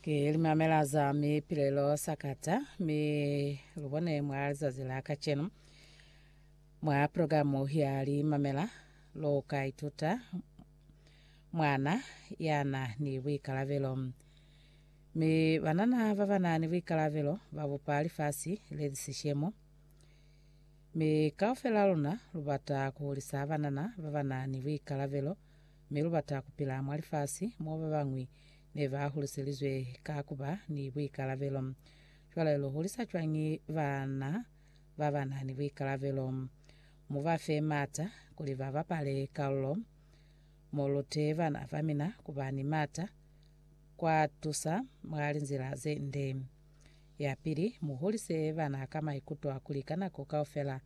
Ki limamela za mipilelo sakata, mi lubone mwa lizazi la kacenu. Mwa progamu ya limamela, luka ituta mwana yana ni buikalabelo. Mi banana babana ni buikalabelo babupa lifasi leli sishemo. Mi kaufel'a luna lu bata ku hulisa banana ba ba na ni buikalabelo, mi lu bata ku pila mwa lifasi mo ba bañwi ne ba huliselizwe ka ku ba ni buikalabelo. Cwale lu hulisa cwañi bana ba ba na ni buikalabelo? Mu ba fe m'ata kuli ba bapale kalulo. Mu lute bana ba mina ku ba ni m'ata kwa tusa mwa linzila ze nde. Yapili, mu hulise bana ka maikuto a kuli ka nako kaufela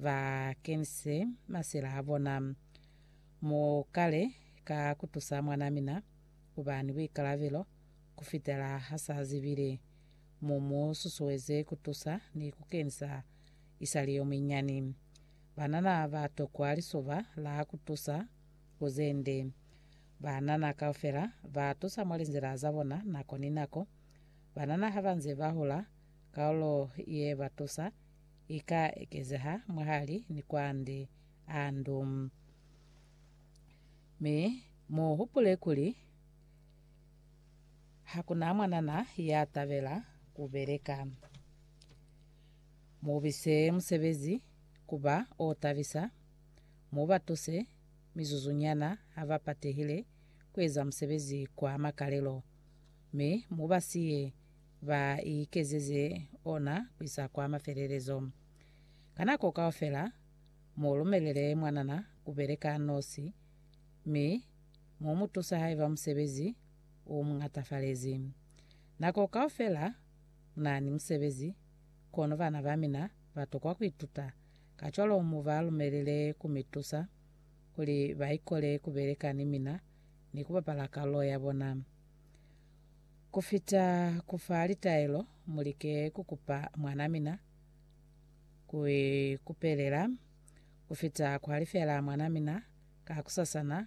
ba kenise masila a bona. Mu kale ka ku tusa mwan'a mina ku ba ni buikalabelo ku fitela ha s'a zibile. Mu mu susueze ku tusa ni ku kenisa i sa li yo munyinyani. Banana ba tokwa lisoba la ku tusa ku ze nde. Banana kaufela ba tusa mwa linzila za bona nako ni nako. Banana ha ba nze ba hola, kaulo ye ba tusa i ka ekezeha mwahali ni kwande a ndu. Mi mu hupule kuli, Hakuna mwanana ya tabela ku beleka. Mu bise musebezi ku ba o tabisa, mu ba tuse mizuzunyana ha ba patehile ku eza musebezi kwa makalelo. Mi mu ba siye ba ikezeze ona kuisa kwa mafelelezo. Ka nako kaufela, mu lumelele mwanana ku beleka nosi, mi mu mu tusa haiba musebezi u mu ñatafalezi. Nako kaufela mu na ni musebezi, kono bana ba mina ba tokwa ku ituta. Kacwalo mu ba lumelele ku mi tusa kuli ba ikole ku beleka ni mina ni ku bapala kalulo ya bona. Ku fita ku fa litaelo, mu like ku kupa mwan'a mina ku ikupelela. Ku fita ku halifela mwan'a mina kakusasana,